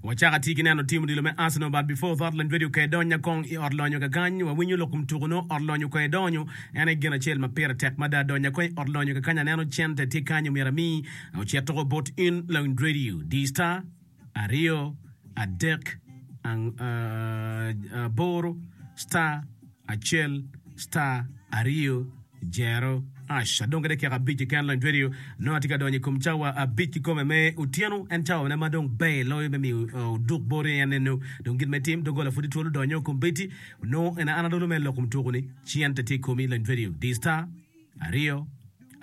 Wacako atir ki neno tim odilo me Arsenal but before that lany radio kong idonya kong i ot lonyo kakany wawinyo lok kom tuko nongo ot lonyo kong idonyo en aye gin acel ma pire tek mada donya kong i ot lonyo kakany aneno cente tye kanyo myero ami ocit tuko bot in lany radio di star aryo adek aboro star acel star aryo zero ash adong ki dakika abic keken lony radio nongo atye ka donyo i kom cawa abic kikome me otyeno en cawa ne ma dong ber loyo me miyo uh, oduk bot en eno dong gin me tim doggola pud itwolo donyo kom beti nongo en an adolo me loko mutuku ni ci en te tye i komi lony radio di star aryo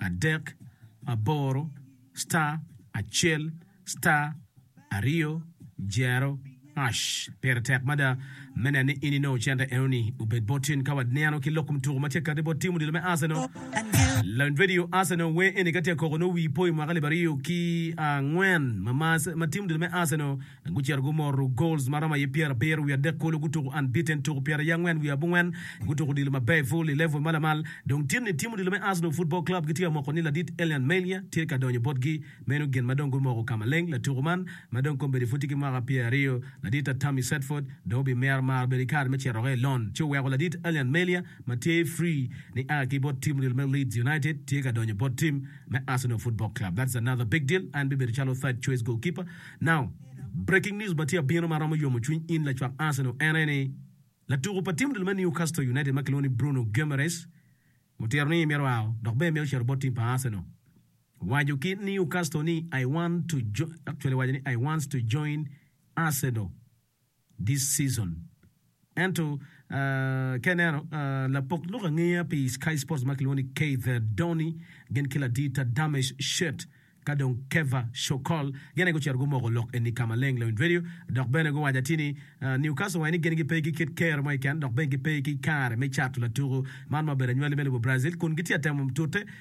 adek aboro star acel Star aryo jero hash pire tek mada me neno ni in inongo cente enoni obed bot in ka waneno ki lok kom tuko ma tye kati bot tim odilo me Arsenal. Lawiny Radio Arsenal wer eni ka tye koko nongo wii poyo mwaka libe aryo ki angwen ma tim odilo me Arsenal gucito gumoro goals ma romo aye pyera abiro wiye adek kulu gutuko unbeaten tuko pyera aye angwen wiye abongwen gutuko odilo maber full i level ma lamal dong tye ni tim odilo me Arsenal football club gitye amoko ni ladit Elian Melia tye ka donyo botgi Meno gin ma dong gumoko ka maleng. Latuko man, ma dong kombeddi pud tye ki mwaka pyer aryo, ladit Tammy Sedford, dong obimero maro bedo ki kare me cito oko i lon, ci oweko ladit Allan Melia ma tye free ni a ki bot tim ril me Leeds United tye ka donyo bot tim me Arsenal Football Club. That's another big deal. En bibedo calo third choice goalkeeper. Now, breaking news ma tye ka bino ma romo yomo cwiny in lacwak Arsenal en aye ni, latuko pa tim ril me Newcastle United ma kilwongo ni Bruno Guimaraes otito ni myero oa dok bene mito cito bot tim pa Arsenal. Waco ki Newcastle ni I want to join, actually waco ni I wants to join Arsenal this season. Ento uh, ka ineno uh, lapok lok angeya pi Sky Sports ma kilwongo ni Keither Donny gin ki ladita Damesh Shet ka dong Kevah Shokol gin aye gucito gumoko lok eni ka maleng Loin Radio dok bene guwaco atir ni uh, Newcastle waco ni gin gipe ki kit kero mo keken dok bene gipe ki kare me cato latuku man ma obedo anywali me lobo Brazil kun gitye atemo tute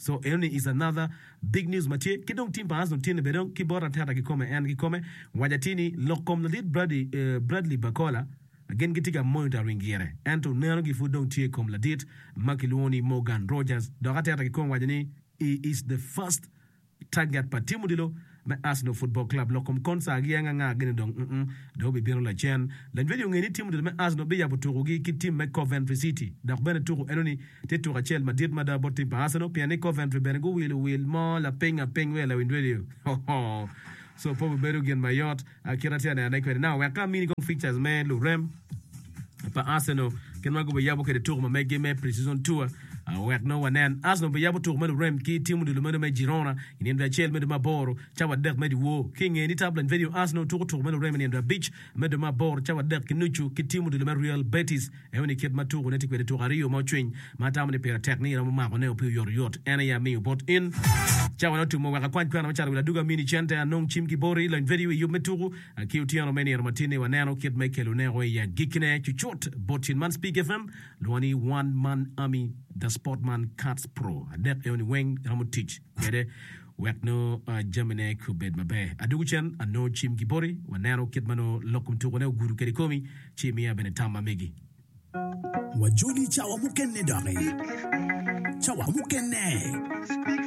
So enoni is another big news ma tye ki dong team pa Arsenal tye ni bene dong ki bot Arteta ki kome en ki kome waco atir ni lok kom ladit Bradley Barcola gin gitye ka monitoring gire ento neno gi pud dong tye kom ladit ma kilwongo ni Morgan Rogers dok Arteta ki kome waco ni he is the first Target pa tim odilo me Arsenal Football Club lok kom konsa agi aye nganga gene dong mm dong bibino lacen. Lanywedi onge ni tim odilo me Arsenal biyabo tuku gi ki tim me Coventry City dok bene tuku eno ni tye tuku acel madit mada bot tim pa Arsenal pien ni Coventry bene guwilo wil mo lapiny apiny wiye lawnywedi ohoo so pe obibedo gin mayot A Kit ma atye ka nenone kwede, nongo wek ka amini kong features me lurem pa Arsenal kit ma gubiyabo kwede tuko ma megi me pre-season tour, a wek nongo wanen. Arsenal biyabo tuko me lurem ki tim odilo meno me Girona i nino dwe acel me dwe me aboro cawa adek me dyewor. Ki i nge ni, Tabloid Vedio, Arsenal tuko tuko me lurem i nino dwe abic me dwe me aboro cawa adek ki nucu ki tim odilo me Real Betis. Eno-ni kit ma tukone tye kwede, Tuk aryo ma ocwiny ma atamo ni pire tek ni iromo makone ope oyotoyot, en aye amiyo bot in. Cawa ne otum, oweko akwany kwena macalo wil adwogi, amini cente, anong cim ki boti, lony vedio i yub me tuku, ki otyeno me nino matin-ni waneno kit me kelone o i agikkine cucut bot cin man. Speak FM lwongo ni One Man Army, The Sport Man, Kats Pro adek eno-ni weng iromo tic kwede. Wek nongo jamine obed maber, adwogo cen, anongo cim ki boti, waneno kit ma nongo lok kom tukone ogudo kede komi, ci imiya bene tam ma megi. Wajoli cawa mukene doki. Cawa mukene.